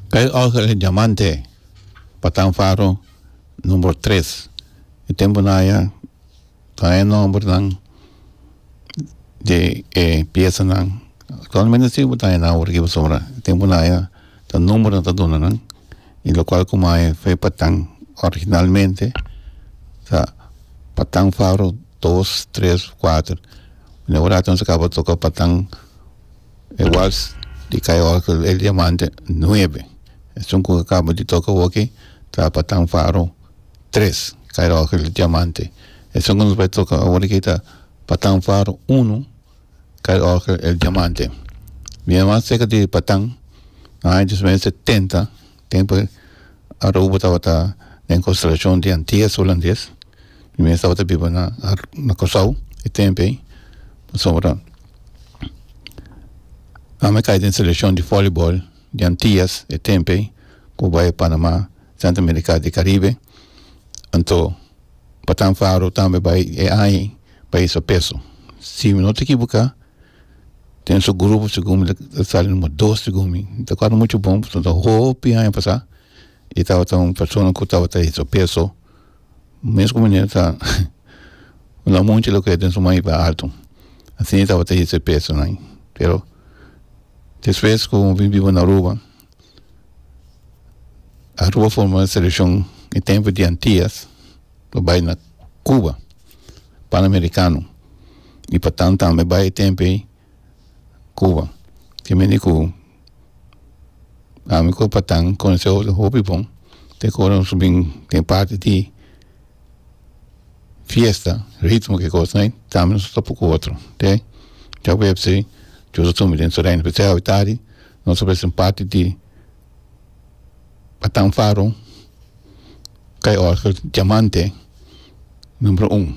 Kei orgel di diamante pa tan faro number tres e tempo naya tan e nomber nan di e pieza nan actualmente si bo ta e nomber riba asobra e tempo naya ta number nan ta duna nan y locual como awe fe pa tan originalmente ta pa tan faro dos tres cuatro neora ta toca pa tan E wals di Kai Orgel e Diamante nuebe. Esun ku kaba di toka awoki ta Patan Faro tres, Kai Orgel e Diamante. Esun ku nos bai toka aworiki ta Patan Faro uno, Kai Orgel e Diamante. Bia mas serka di Patan, na aña dos mil e setenta tempu Aruba tabata den konstelashon di Antias Hulandes mi mes tabata biba na na Kòrsou e tempu ei pasobra ami a kai den selekshon di vòleibòl di Antias e tempu ei ku bai Panamá Sèntro Amerika di Karibe anto Batán Faro tambe bai e aña ei bai hisa peso si mi no ta ekiboká ten su grupo segun mi ta sali numero dos segun mi mi ta kual muchu bon pasobra mi ta hopi aña pasa y tabata un persona ku tabata hesa peso mes ku mine ta la muchi loke den su maiba alto asi tabata hesa pesonan pero despues ku mi biba na aruba. Aruba forma e selekshon e tempu di Antias pa bai na Kuba pan amerikano i pa tan tambe bai e tempu ei Kuba ke mende ku ami ku pa tan konosé hopi bon te kor asu bin den parti di. fiesta ritmo ke kos nai tambe nos ta topa ku otro te jueves chua ta sumi den terreno pe te awitardi nos ta presen parti di batan faro kai orga diamante numero un.